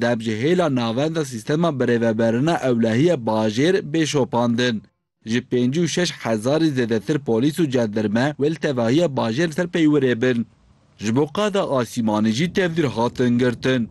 deb ji hêla navenda sîstema birêveberina ewlehiya bajêr bê şopandin. Ji pêncî û şeş hezarî zêdetir polîs û cendirme wê li tevahiya bajêr li ser peywirê bin. Ji bo qada asîmanî jî tevdîr hatin girtin.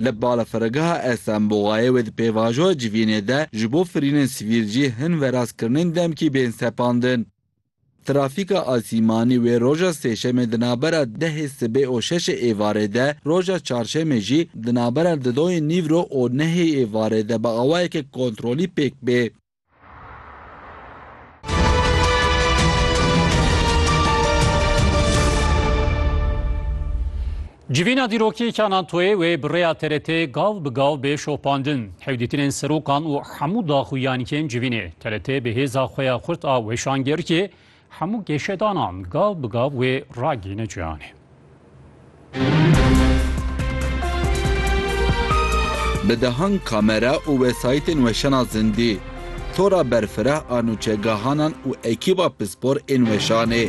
Li balafirgeha Esenboxayê wê di pêvajoya civînê de ji bo firînên sivîl jî hin verast kirinên demkî bên sepandin. Trafîka asîmanî wê roja Sêşemê di navbera dehê sibê û şeşê êvarê de, roja Çarşemê jî di navbera didoyê nîvro û nehê êvarê de bi awayeke kontrolî pêk bê. Civîna dîrokîyeke Anantoyê wê bi rêya TRT'ê gav bi gav bê şopandin. Hewdîtinên serokan û hemû daxuyan yên civînê TRT'ê bi hêza xwe ya xurt a weşangirkê hemû geşedanan gav bi gav wê ragihîne cihanê. Bi dehan kamera û wesayîtên weşana zindî, tora berfireh a nûçegahanan û ekîba pispor ên weşanê,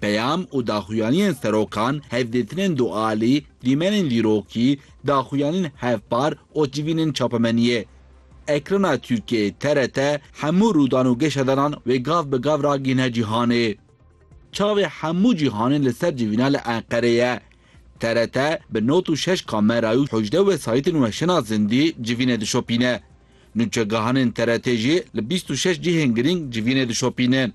Peyam û daxuyaniyên serokan, hevdîtinên dualî, dîmenên dîrokî, daxuyanîn hevpar û civînên çapemeniyê. Ekrana Tirkiyeyê, TRT, hemû rûdan û geşedanan wê gav bi gav ragihîne cîhanê. Çavê hemû cîhanê li ser civîna li Enqerê ye. TRT bi not û şeş kamerayê û hejdeh wesayîtên weşana zindî civînê dişopîne. Nûçegahanên TRT'ê jî li bîst û şeş cihên girîng civînê dişopînin.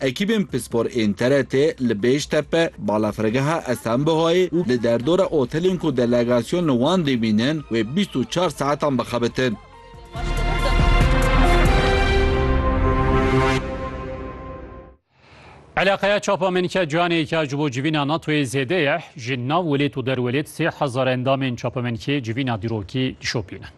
Ekîbên pispor ên TRT'ê li Bêştepe, balafirgeha Esenbihayê û di derdora otelên ku delegasyon li wan dimînin wê bîst û çar saetan bixebitin. Eleqeya çapa Menîke Canê ya ji bo civîna NATOyê zêde ye. Ji nav welêt û derwelêt sê hezar endamên çapa Menîkê civîna dîrokî dişopînin.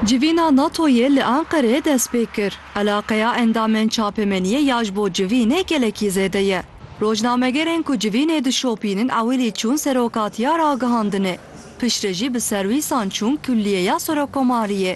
Civîna NATO'yê li Enqerê dest pê kir. Eleqeya endamên çapemeniyê ya ji bo civînê gelekî zêde ye. Rojnamegerên ku civînê dişopînin ewilî çûn serokatiya ragihandinê. Piştre jî bi serwîsan çûn kulliyeya serokomariyê.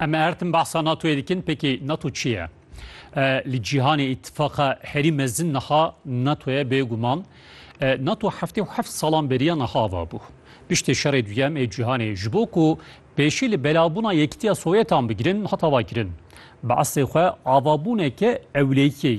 Em ertim bahsa NATO'yê dikin peki NATO çi ye? Li cîhanê îtifaqa herî mezin niha NATO'ye bêguman. NATO heftê û heft salan beriya niha va bû. Piştê şerê duyem ê cîhanê ji bo ku pêşî li belabûna yekitiya Sowyetan bigirin hata va kirin. Bi eslê xwe avabûneke ewleyiyê ye.